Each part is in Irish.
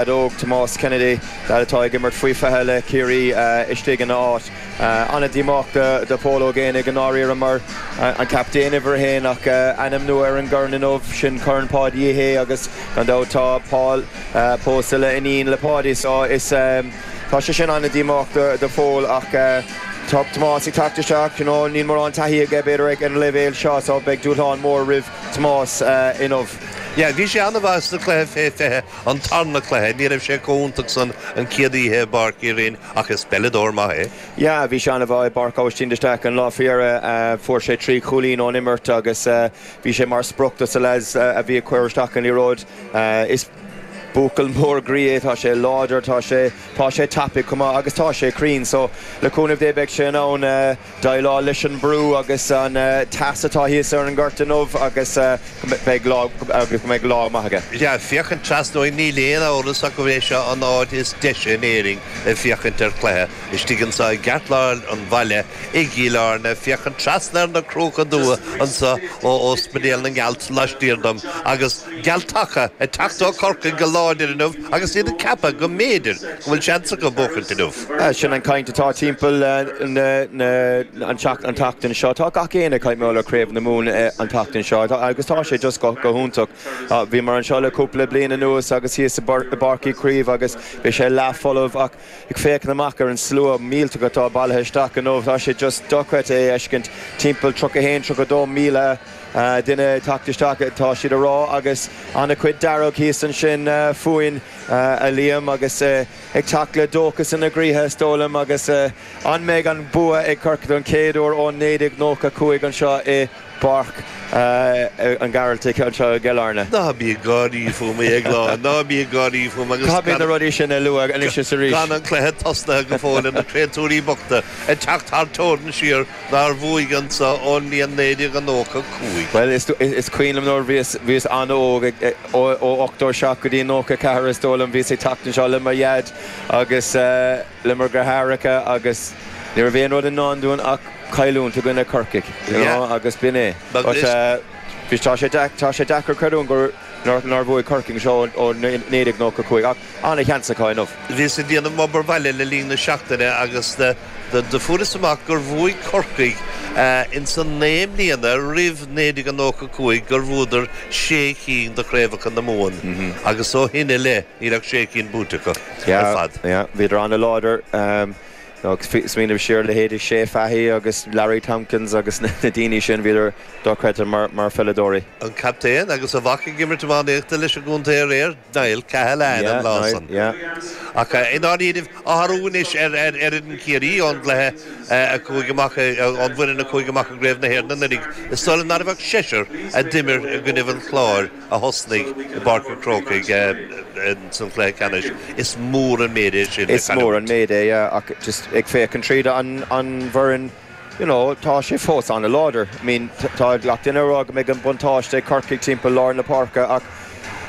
a dódh Tomás Kennedy, lead atá ag imirt faoi 20 le Ciarraí, istigh ina áit. An-díomách do Phól Ó Géibheannaigh i ndáiríre mar an captaen uimhir a haon ach ainm nua ar an gcorn inniu, sin Corn Pháidí Uí Shé agus gan dabht tá Pól pósta le iníon le Páidí so tá sé sin an-díomách do Phól ach tá Tomás ag teacht isteach, you know níl mórán taithí aige b'fhéidir ag an leibhéal seo so beidh dúshlán mór roimh Tomás inniu. Yeah, bhí sé an-mhaith sa chluiche fé 20. An tarna cluiche, ní raibh sé chomh iontach san an chéad oíche i bPáirc Uí Rinn ach is peileadóir maith é. Yeah, bhí sé ana mhaith i bPáirc Aibhistín de Staic an lá faoi dheireadh. Fuair sé trí chúilín ón imirt agus bhí sé mar sprioc dos na lads a bhí ag cur isteach an liathróid. Is buachaill mór groí é, tá sé láidir, tá sé tá sé tapaidh chomh maith agus tá sé cruinn so le cúnamh Dé beidh sé in ann eh, déileáil leis an mbrú agus an teas atá thíos ar an ngort inniu agus go mbeidh lá maith aige. Is ea, féachaint trasna uainn, níl aon amhras ach gurb é seo an áit is deise in Éirinn le féachaint ar chluiche. Istigh anseo i gceartlár an bhaile i gCill Airne, féachaint trasna ar na Cruacha Dubha anseo ó Óspaidéal na nGealt laistiar dom, agus Gealtacha ag teacht ó Chorcaigh go láidir inniu agus iad ag ceapadh go mb'fhéidir go bhfuil seans acu buachaint inniu. Sin an chaint atá timpeall an tseachtain seo. Tá gach éinne ag caint mar gheall ar Chraobh na Mumhan an tseachtain seo agus tá sé just go hiontach. Bhíomar anseo le cúpla bliain anuas agus thíos i bPáirc Uí Chaoimh agus bhí sé leath folamh ach ag féachaint amach ar an slua millteach atá bailithe isteach inniu tá sé just dochreidte é a fheiscint. Timpeall 31, 32 míle duine ag teacht isteach atá siad a rá agus an-chuid dearg thíos ansin fúinn a Liam agus ag teacht le dóchas ina gcroíthe, is dóigh liom, agus an mbeidh an bua ag Corcaigh don chéad uair ó 1995 anseo i bPáirc an Ghearaltaigh anseo i gCill Airne? Ná bí ag gáirí fúm, a Dhéagláin, ná bí ag gáirí fúm agus gan. Caithfidh na rudaí sin a lua anois is arís. Gan an cluiche tosnaithe go fóill. Á, na créatúirí bochta ag teacht thar teorainn siar nár bhuaigh anseo ón mbliain 1995. Bhuel, is cuimhin liom nuair a bhíos an-óg ag. Ó 87 go dtí 94, is dóigh liom, bhíos ag teacht anseo le mo dhaid agus le mo dhreatháireacha agus ní raibh aon rud i ndán dúinn ach cailliúint i gcoinne Corcaigh, you know, agus b'in é. Tá sé deacair creidiúint nár bhuaigh Corcaigh anseo ó 1995 ach Ana-sheans acu inniu. Bhíos ag déanamh m'obair bhaile le linn na seachtaine agus fuaireas amach gur bhuaigh Corcaigh ins an naoi mbliana roimh 1995 gur bhuadar sé chinn de chraobhacha na Mumhan agus ó shin i leith níl ach sé chinn buaite acu ar fad. Bhíodar ana-láidir. Smaoiním siar ar leithéidí Shea Fahy agus Larry Tompkins agus na daoine sin, bhíodar dochreidte mar pheileadóirí. An captaen agus a mhac ag imirt iománaíochta leis an gcontae aréir. Niall Cahalane an lá san. Ach i ndáiríribh, athrú anois ar fhoireann Chiarraí ón gcluiche a chuaigh amach, ón bhfoireann a chuaigh amach i gCraobh na hÉireann anuraidh, is dóigh liom ná raibh ach seisear a d'imir i gcoinnibh an Chláir a thosnaigh i bPáirc an Chrócaigh sa chluiche ceannais. Is mór an méid é sin le cailliúint. Is mór an méid é, ach just ag féachaint tríd an bhfoireann, you know, tá sé fós an-láidir. I mean, tá gach duine ag rá go mbeidh an buntáiste ag Corcaigh timpeall lár na páirce ach,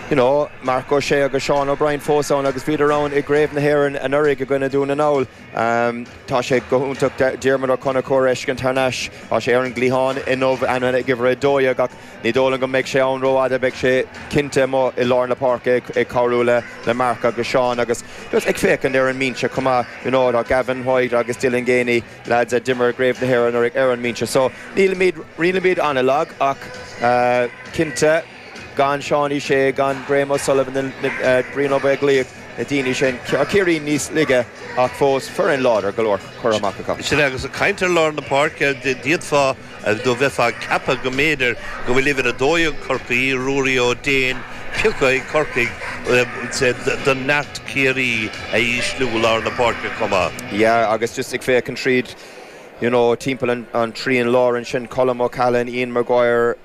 you know, Marc Ó Sé agus Seán O'Brien fós ann agus bhíodar ann i gCraobh na hÉireann anuraidh i gcoinne Dhún na nGall. Tá sé go hiontach Diarmuid Ó Conchúir a fheiscint thar n-ais. Tá sé ar an gcliathán inniu ann ag uimhir a dó dhéag ach ní dóigh liom go mbeidh sé ann rófhada. Beidh sé cinnte amuigh i lár na páirce ag cabhrú le Marc agus Seán agus just ag féachaint ar an mbinse chomh maith, you know, tá Gavin White agus Dylan Geaney, lads a d'imir i gCraobh na hÉireann anuraidh ar an mbinse so nílimid, nílimid an-lag ach cinnte gan Seánie Shea, gan Graham O'Sullivan, Brian Ó Beaglaoich, na daoine sin, tá Ciarraí níos laige ach fós foireann láidir go leor curtha amach acu. Sin é, agus ag caint ar lár na páirce, d'fhéadfá. Do bheifeá ag ceapadh go mb'fhéidir go bhfuil uimhir 12 Corcaí, Ruairí Ó Déin, pioctha ag Corcaigh d'fhonn neart Ciarraí a ísliú lár na páirce chomh maith. Yeah agus just ag féachaint tríd you know timpeall an trian láir ansin, Colm O'Callaghan, Ian Maguire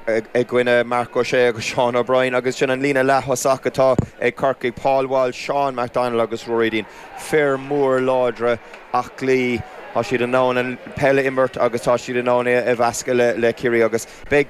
i gcoinne Marc Ó Sé agus Seán O'Brien agus sin an líne leath-thosach atá ag Corcaigh, Paul Walsh, Seán McDonnell agus Ruairí Deane. fir mhóra láidre aclaí, tá siad in ann an peil a imirt agus tá siad in ann é a mheascadh le Ciarraí agus beidh.